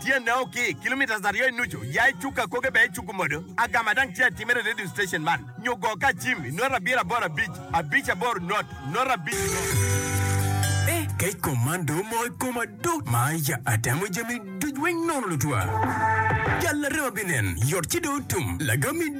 Tyenne o ki kilometres aryo i nucu, ya i cuk akoge bene icuku modo. Agama dang tye atimere i radio station man, nyo go ka acim i nota abiro aboro abic, abic aboro not, not abic not. Eh, kec kom man dong omoko i koma do, ma ya atemo jami duc weng nono lutwa. Jal larema binen, yot ci dong otum, lagam i.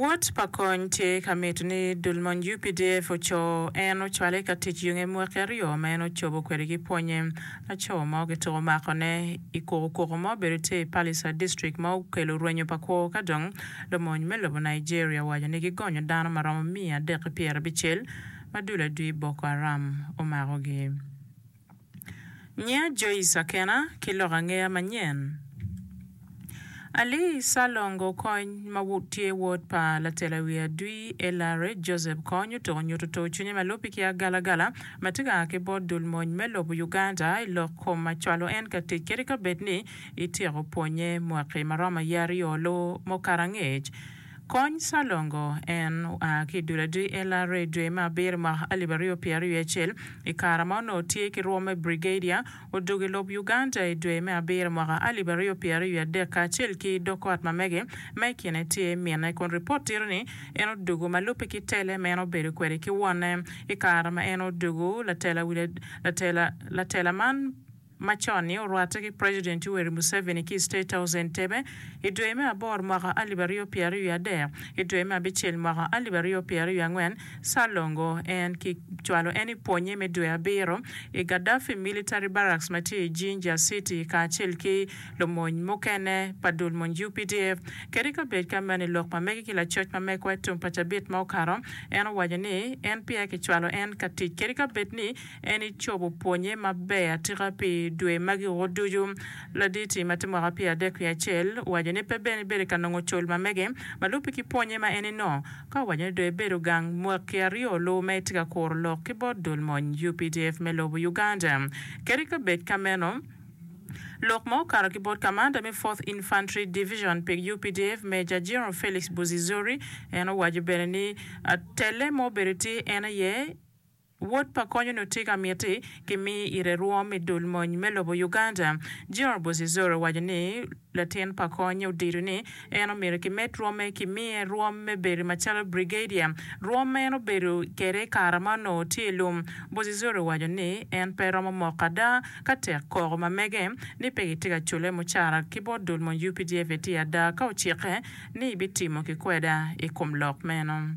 Wot pa kony tye ka mito ni dul mony updf oco en ocwale ka tic yonge mwaki aryo ma en ocobo kwede ki pwonye. Laco mo kituko mako ne I kuku kuku ma obedo tye I Pallisa district ma okelo rwenyo pa kwo ka dong lumony me lobo Nigeria owaco ni gigonyo dano maromo miya adek ki pyerabicel ma dul adwi Boko Haram omako gi. Nyiya Joyce Akena ki lok angeya manyen. Ali Salongo Kony ma tye wod pa latela wiye adwi LRA Joseph Kony otuko nyuto tur cwinye ma lubbe ki agalagala ma tye ka a ki bot dul mony me lobo Uganda i lok kom ma cwalo en ka tic kadi ka bed ni ityeko pwonye mwaki ma romo aye aryo lu mukato angec Kony Salongo en oa ki dul adii LRA dwe me abiro mwaka alip aryo pyera aryo acel i kare ma onongo tye ki rwom me Brigadier. Odwogo i lob Uganda i dwe me abiro mwaka alip aryo pyera aryo adek kacel ki dog ot ma mege ma i kine tye minne kun ripot tito ni en odwogo ma lubbe ki tele ma en obedo kwede ki wonne i kare ma en odwogo. Latela latela man. macon-ni orwatte ki President Yoweri Museveni ki i State House Entebbe i dwe me aboro mwaka alip aryo pyera aryo adek. I dwe me abicel mwaka alip aryo pyera aryo angwen, Salongo en ki cwalo en i pwonye me dwe abiro i Gaddafi Military Barracks ma tye i Jinja City kacel ki lumony mukene pa dul mony updf kadi ka bed ka meno i lok ma mege ki lacoc ma mekwa i tum pa cabit ma okato en owaco ni en peya ki cwalo en ka tic kadi ka bed ni En ecobo pwonye maber atika pi dwe magi o ducu. Laditi ma tye mwaka pyer adek wiye acel owaco ni pe bene bedo ka nongo col ma mege ma lubbe ki pwonye ma en eno ka owaco ni dong ebedo gang mwaki aryo luwu ma etye ka kuro lok ki bot dul mony updf me lobo Uganda kadi ka bed ka meno lok ma okato ki bot kamanda me fourth infantry division pi updf Major General Felix Buzizori en owaco bene ni telle ma obedo tye en aye Wod pa konyono tye ka miti ki mi ite rwom me dul mony me lobo Uganda. General Bozizoro owaco ni latin pa konye odito ni en omyero ki med rwome ki miye rwom me bedo macalo Brigadier, rwom ma en obedo kede i kara ma onongo tye i lum. Bozizoro owaco ni en pe romo moko ada ka tek koko ma mege ni pe gitye ka cule mucara ki bot dul mony updf etye ada ka ocikke ni bitimo ki kweda i kom lok meno.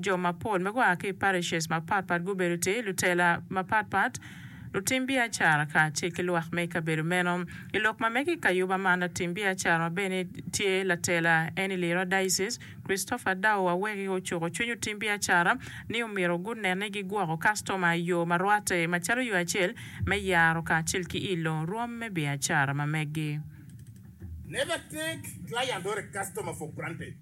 Jo mapol ma gua ki i parishes mapatpat gubedo tye lutela mapatpat, lutim biacara kacel ki lwak me i kabedo meno. I lok ma mege i kayuba man, latim biacara ma bene tye latela en i Lira Diocese, Christopher Dao Aweki ocuko cwiny otim biacara ni omyero gunen ni gigwoko kastoma i yo ma rwatte macalo yo acel me yaro kacel ki ilo rwom me biacara ma megi. Never take client or a customer for granted.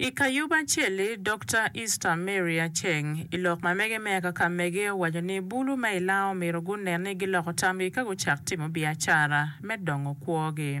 I kayubo acel-li, Dokta Easter Mary Aceng, i lok ma mege me Kakamege owaco ni bulu ma i Langa omyero gunen ni giloko tamgi ka gucak timo biacara me dongo kwogi.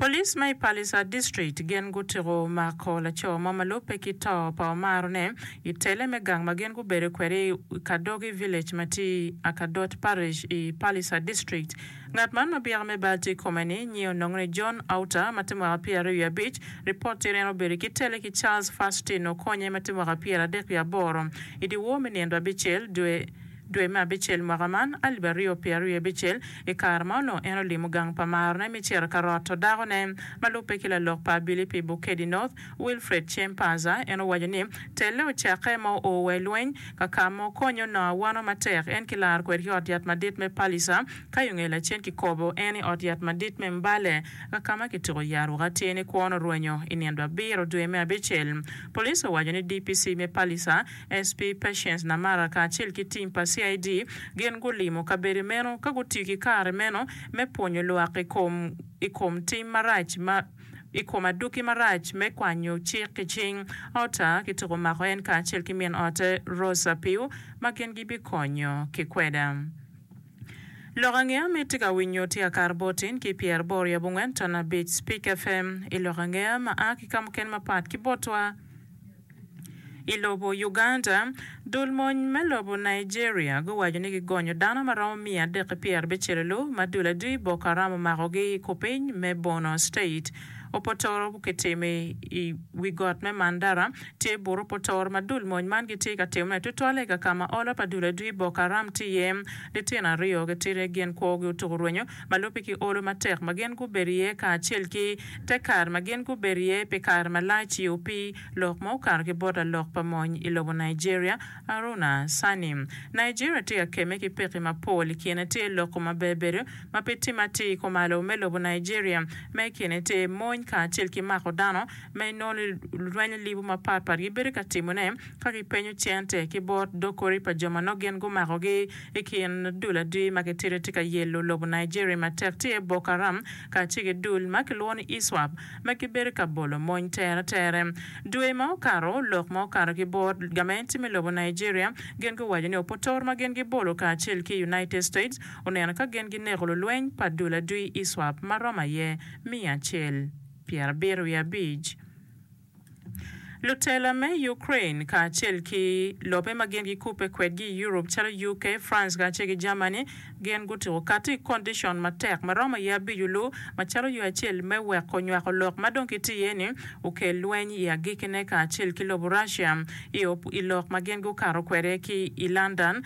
Police ma i Pallisa District gin gutiko mako laco mo ma lubbe ki to pa Omaro ne i tele me gang ma gin gubedo kwede i Kadogi Village ma tye i Akadot Parish i Pallisa District. Ngat man ma byeka me bal tye i kome ni nyinge onongo ni John Outa ma tye mwaka pyeraryo wiye abic. Ripot tye ni en obedo ki tele ki Charles Fastin Okonye ma tye mwaka pyeradek wiye aboro i dyewor me nino abicel dwe Dwe me abicel mwaka man, alip aryo pye aryo i abicel, i kare ma onongo en olimo gang pa marone me ciro ka roto dakone ma lubbe ki lalok pa abili pi Bukedi North, Wilfred Chiemparzer, en owaco ni, Telle ocakke ma oo wa i lweny ka ka ma okonyo Noah wano matek, en kilaro kwede ki ot yat madit me Palicer, ka i nge lacen kikobo en i ot yat madit me Mbale, ka ka ma kituko i Yaruk atir ni kwon orwenyo i nino abiro dwe me abicel. Police owaco ni DPC me Palicer, Asp Patience Namara kacel ki tim pa CID gin gulimo kabedo meno ka gutiyo ki kare meno me pwonyo lwak i kom i kom tim marac ma i kom adwogi marac me kwanyo cik ki cing. Ota kituko mako en kacel ki min ote Rose Apiu ma gin gibikonyo ki kweda. Lok angeya miti ka winyo tye akar bot in ki pyer boro i abongwen ton abic Speak FM i lok angeya ma a ki kamukene mapat ki botwa. I lobo Uganda, dul mony me lobo Nigeria guwaco ni gigonyo dano ma romo miya adek ki pyera abicelulu ma dul adwi Boko Haram omako gi i kupiny me Borno State. Opotoro ki timo i i wi got me Mandara tye bur opotoro ma dul mony man gitye ka timo ne tutwalle i kakama olo pa dul adwi Boko Haram tye iye. Litino aryo gitidi gin kwo gi otuku rwenyo. ma lubbe ki olo matek ma gin gubedo iye kacel ki te kare ma gin gubedo iye pi kare malac-ci opii lok ma okato ki bot lalok pa mony i lobo Nigeria, Aruna Sani. Nigeria tye ka kemme ki pekki mapol, i kine tye loko ma bebedo ma pe timme atir kumalo me lobo Nigeria, ma i kine tye mony kacel ki mako dano ma i nono lweny libu mapatpat gibedo ka timone. Ka gipenyo cente ki bot dog kori pa jo ma nongo gin gumakogi i kin dul adwi ma gitito tye ka yelo lobo Nigeria matek tye Boko Haram kacel ki dul ma kilwongo ni Iswap ma gibedo ka bolo mony tere tere. Dwe ma okato, lok ma okato ki bot gamente me lobo Nigeria gin guwaco ni opotoro ma gin gibolo kacel ki United States oneno ka gin gineko lulweny pa dul adwi Iswap ma romo aye miya acel pyera bito wiye abic. Lutela me Ukraine kacel ki lobe ma gin gikubbe kwedgi i Europe calo UK, France kacel ki Germany gin gutuko kati i condicion matek ma romo aye abico lu macalo yo acel me weko nywako lok ma dong kitye iye ni okel lweny i agikine kacel ki lobo Russia i lok ma gin gukato kwede ki i London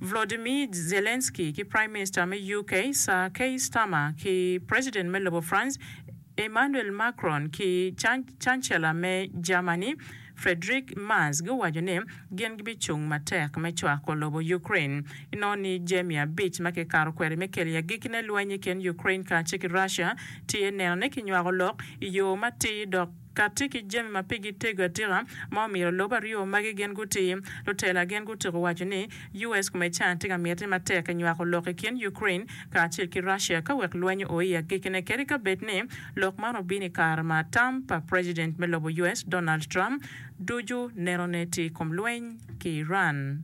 Volodymyr Zelensky ki Prime Minister me UK Sir Keir Starmer ki President me lobo France Emmanuel Macron ki Cancela me Germany, Friedrich Merz guwaco ni gin gibicung matek me cwako lobo Ukraine. Inongo ni jami abic ma kikato kwede me keli agikine lweny i kin Ukraine kacel ki Russia tye nenone ki nywako lok i yo matir dok kati ki jami ma pigi tego atika ma omiro lobo aryo magi gin gutir. Lutela gin gutiko waco ni US kome can tye ka miti matek i nywako lok i kin Ukraine kacel ki Russia ka wek lweny o i agikine kadi ka bed ni lok man obino i kare ma tam pa president me lobo US Donald Trump ducu nenone tye i kom lweny ki Iran.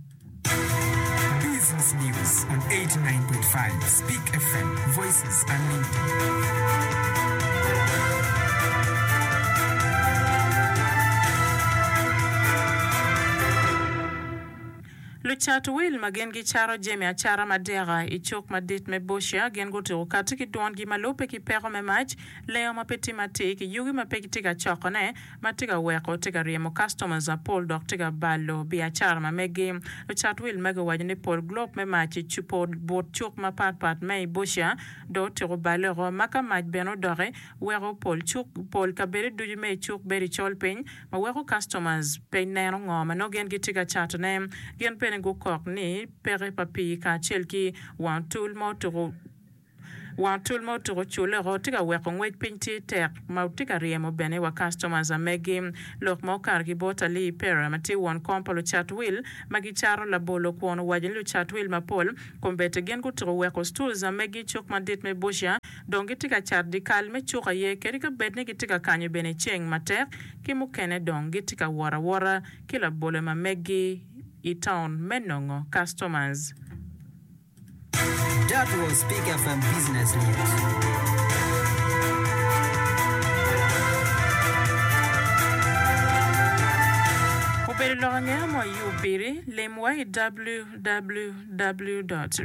Business News on eighty nine point five Speak FM, Voices Unlimited. Lucat wil ma gin gicato jami acata madeka i cuk madit me Bossier gin gutuko kati ki dwongi ma lubbe ki peko me mac, leyo ma pe tim atir ki yugi ma pe gitye ka cokone ma tye ka weko tye ka ryemo customers mapol dok tye ka balo biacara ma megi. Lucat wil magi owaco ni pol glope me mac i cupa but cuk mapat pat me i Bossier dong otyeko bale oko ma ka mac bene odoki weko pol kabedo ducu me i cuk bedo i col piny ma weko customers pe neno ngo ma nongo gin gitye ka cato ne, gin bene gukok ni peke pa pii kacel ki wang otul ma otuko wang otul ma otuko culeko tye ka weko ngwec piny tye tek ma tye ka ryemo bene wa customers amegi lok ma okato ki bot Ali Ipera ma tye won kom pa lucat wil ma gicato labolo kwon owaco ni lucat wil mapol kombedde gin gutuko weko stools amegi cuk madit me Busia dong gitye ka cat dyekal me cuk aye kadi ka bed ni gitye ka kanyo bene ceng matek ki mukene dong gitye ka wot awota ki labolle ma meggi i taun me nongo customers. That was Big FM Business News. Obedo lok angeya mo iu piri, lim wa i www.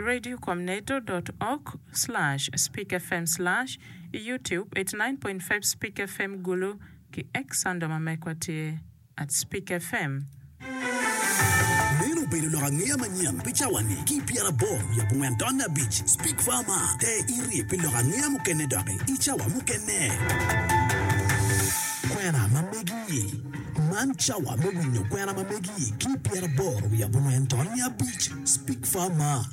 Radio com nato. Org. Slash Speak FM Slash I Youtube, eighty nine point five Speak FM Gulu ki X Sando ma mekwa tye at Speak FM. Meno obedo lok angeya manyen pi cawa-ni ki pyera aboro wiye abongwen taun me abic. Speak Farma, Te irye pi lok angeya mukene doki i cawa mukene. Kwena ma megi, Man cawa me winyo kwena ma megi ki pyera aboro wiye abongwen taun me abic. Speak Farma.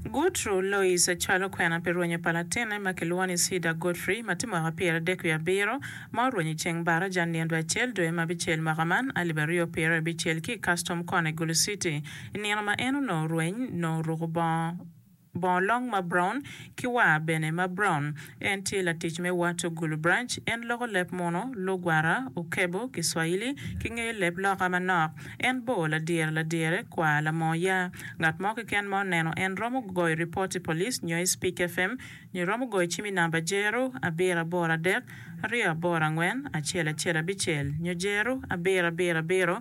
Guthru Lois ocwalo kwena pi rwenyo pa latinne ma kilwongo ni Cedar Godfrey ma tye mwaka pyeradek wiye abiro ma orwenyo i ceng baraja nino dwe acel dwe ma abicel mwaka man alip aryo pyera i abicel ki i Custom Corner i Gulu City. I nino ma en onongo orweny, nongo oruko bongo Bongo long ma brown, ki war bene ma brown. En tye latic me Wato Gulu Branch. En loko leb muno, Lugwara, Ukebo, Kiswahili, ki ngeyo leb loka manok. En bor ladyere ladyere, kwar lamoo ya. Ngat mo keken ma oneno en romo goyo ripot i police nyo i Speak FM nyo romo goyo cim i namba jero abiro aboro adek aryo aboro angwen acel acel abicel nyo jero abiro abiro abiro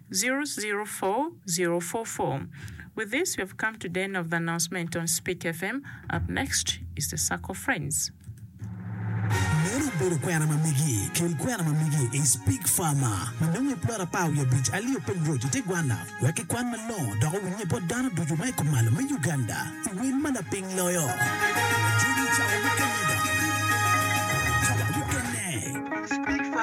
Zero zero four zero four four With this we have come to the end of the announcement on Speak FM. Up next is the Circle Friends. Meno obedo kwena ma megi. Kel kwena ma megi i Speak Farmer ma nongo i plot apar wiye abic alio piny roc i te gwanna wek ki kwan malongo dok owinnye bot dano ducu ma i kumalo me Uganda i wel ma lapiny loyo. Jogi cawa mukene dok cawa mukene.